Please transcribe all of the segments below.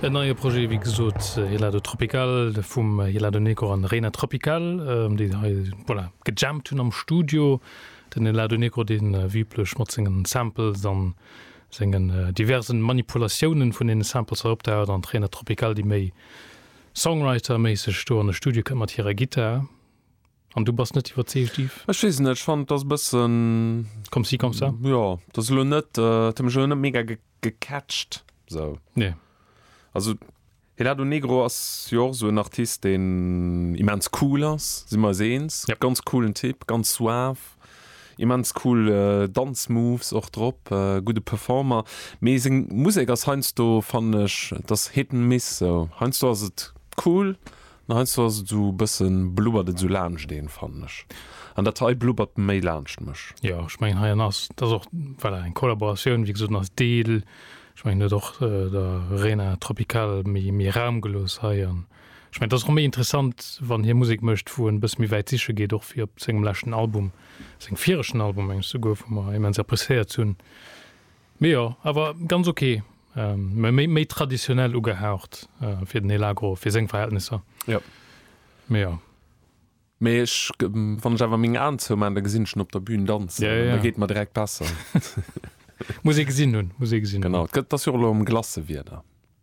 En neie Projet, wéi gesot, Helado Tropical vum Helado Negro an Reina Tropical, déi hei, voilà, gejammt hunn am Studio. Den Helado Negro, dee wéi üblech mat sengen Samples an sengen diversen Manipulatiounen vun deene Samples hei opdaucht, an d'Reina Tropical, déi méi Songwriter-méisseg do an de Studio kënnt mat hirer Gittar. An du bass net iwwerzeegt, Yves? Ech weess net, ech fannen et ass e bëssen. Comme ci, comme ça? Jo, et ass elo net, et huet mech elo net mega gecatcht esou. Nee. Also Helado Negro ass jo och esou en Artist, deen immens cool ass, si mer eis eens. Yep. Ganz coolen Typ, ganz suave, immens cool Danzmoves och drop, gudde Performer. Mee seng Musek ass heiansdo, fannen ech, et ass Hit and Miss esou. Heiansdo ass et cool, Mä heiansdo ass et esou e bëssen, blubbert et esou laanscht een, fannen ech. An dat hei blubbert méi laanscht mech. Jo, ech mengen heiannen ass, dat ass och voilà eng Kollaboratioun, wéi gesot, en ass Deel, ech mengen en huet och der Rena Tropical méi, méi Raum gelooss hei. An ech mengen, et ass och méi interessant, wann hie Musek mécht, wou en e bësse méi wäit siche geet, och wéi op sengem leschten Album, sengem viregten Album, meng ech souguer, wou mer immens appréciéiert hunn. Mee jo, awer ganz ok, méi méi traditionell ugehaucht fir den Elagro, fir seng Verhältnisser. Jo. Mee jo. Mee ech, wann ech awer meng Aen zou maan, da gesinn ech en op der Bühn danzen. Jo, jo. Da geet mer direkt besser. Muss ee gesinn hunn, muss ee gesinn hunn. Genau, et gëtt, et ass jo och elo erëm Glacewierder.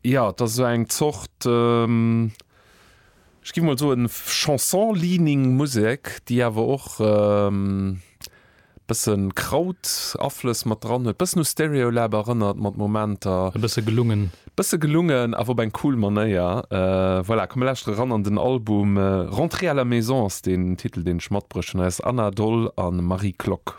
Jo, et ass esou eng Zort, ech géif mol soen, Chanson-leaning Musek, déi awer och e bësse Kraut-Aflëss mat dran huet, e bëssen u Stereolab erënnert mat Momenter. E bësse gelungen. E bësse gelungen, awer op eng cool Manéier. Voilà, komm mir lauschtere ran an den Album. Rentrée à la maison ass den Titel, deen ech matbruecht hunn. Hei ass Anna Doll a Marie Klock.